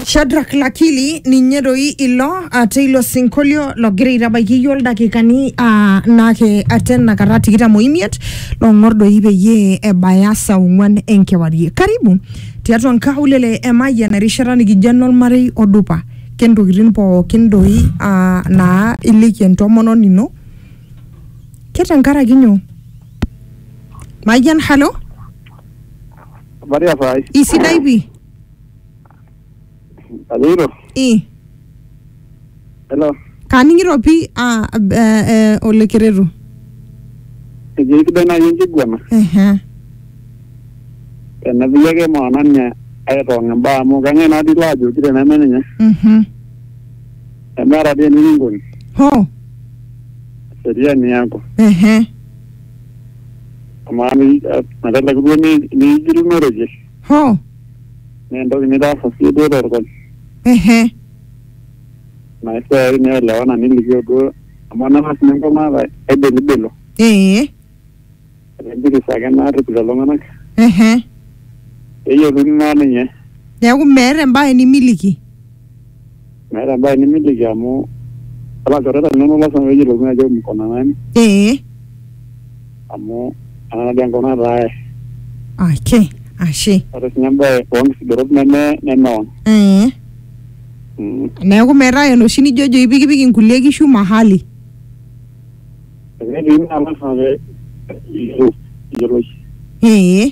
Shadrack Lakili ninye doi ilo ah, teilo sinkolio logira aitabaiki iyie oldakikani ah, naake atena kata tikitam oimiet long'or doi peyie ebaya saa ong'uan enkewarie. Karibu tiatua nkaulele e Mayian erishata nikijo enormarei odupa kentokitin pookin doi ah, naa iliki entomononi ino ke tenkaraki nyoo? Mayian, halo? Maria Fai. Isidai pi. Ajoito. I. Hello. Kaning'ito pi ah, eh, eh, Ole Keretu. Ejo isidai naaji enkiguana. Ehe. Tenepiki ake maana ninye aitong' imbaa amu kang'ae naa dii ilo ajoki teneme ninye. Mhm. Nemeeta dii enikinkoni. Ho. Seriani yako. Ehe. Amaa ni- a- meteleku duo ni- niigilunoroje Hoo. naa entoki nitaasa sii duo torkol Ehe. naa esiai nielewana nilikio duo amu enang'as ninye enkop naata aibelibelo Ee. etejoki sake naarrip lelo tung'anak Ehe. peyiolouni naa ninye Neeku meeta embae nimiliki. meeta embae nimiliki amu ilchoreta linonok lasima pee eyiolouni ajo mkona nani ee amu ena dii enkop nataa ake ashe ore sinye embae oonkisudorot neme nemeon ee Mm. neeku metaa enoshi nijojo ipikipik inkulie kishu mahali Eketii naa lasima pee eyiolou- eyioloi ee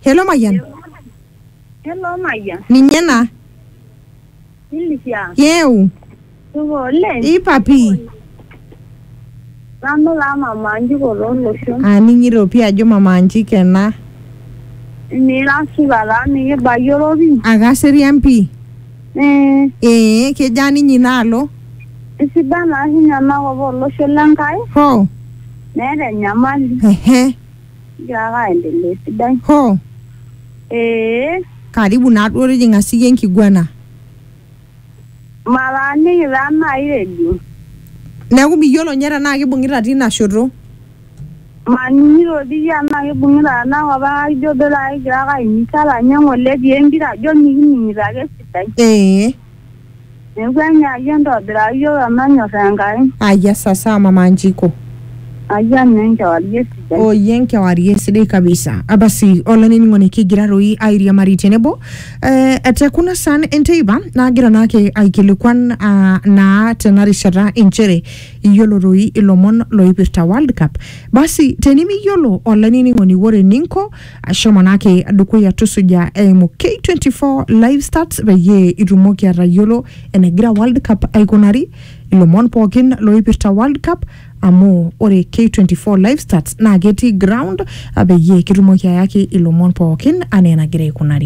Hello Mayian. Hello Mayian. Ninye ena. Ilisia. Yeu. Supa oleng. Ipa pii. Nanu taa mama Anjiko toolosho. Aning'ito pii ajo mama Anjiko ena. Nira supa taa mikibayioro pii. Akaserian pii. Eh. Ee kejaa ninye inaalo? Isidan taa ninye enakop olosho le Nkai. Hoo. Meeta enyamali. Ehe. Kigira ake aendelea esidai. Hoo. Ee. Karibu naa duo tijing'a siyie enkiguana. Mataaniki taa nai redio. Neeku miyiolo ninye tenaa kibung'ita tina shoto. Maning'ito dii tenaa kibung'ita tena kop kake ijo duo taata kigira ake aimizana ng'ole etii empira ajo mikining'ito ake esidai. Ee. Neeku enyaayie entobiraa iyiook emanyor Enkai. Ayia sasa mama Njiko. Ayia naa enkewarie sidai. Oh ye enkewarie sidai kabisa. Abasi olainining'oni kigira doi airiamari tenebo eh, te kuna saan enteipa naagira naake aikilikuan ah, naa tena rishata inchere iyiolo doi ilomon loipirta World Cup. Basi tenimiyiolo olainining'oni ore eninko ashomo naake dukuya tusuja eimu K24 live stats peyie itumoki atayiolo enegira World Cup aikunari ilomon pookin loipirta World Cup amu ore K24 live stats naa ketii ground ah, peyie kitumoki ayaki ilomon pookin anaa enagira aikunari.